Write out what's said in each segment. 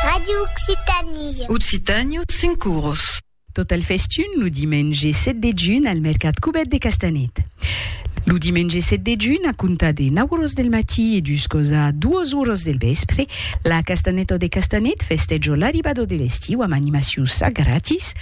Ràdio Occitània. Occitània, cinc oros. Tot al festun lo dimenge 7 de junh al mercat Cubèt de Castanet. Lo dimenge 7 de junh, a comptar de 9 oros del matí e juscos a 2 oros del vèspre, la Castanèto de Castanet festèja l'arribada de l'estiu amb animacius a gratis,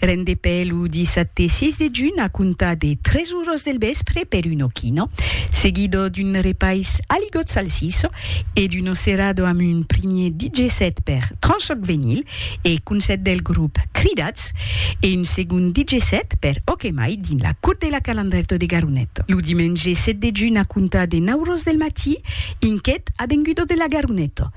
Rendepè lo dissabte 6 de junh a comptar de 3 oras del vèspre per un ochino, seguido d'un repais aligot salsiço e d'un ocerado amb un primier DJ set per Tranchoc Venyl e concèrt del grop Cridats e un segond DJ set per Okemai dins la Cour de la Calandrèto de Garonet. Lo dimenge 7 de junh a comptar de 9 oras del matí, un quet a Vengudo de la Garonet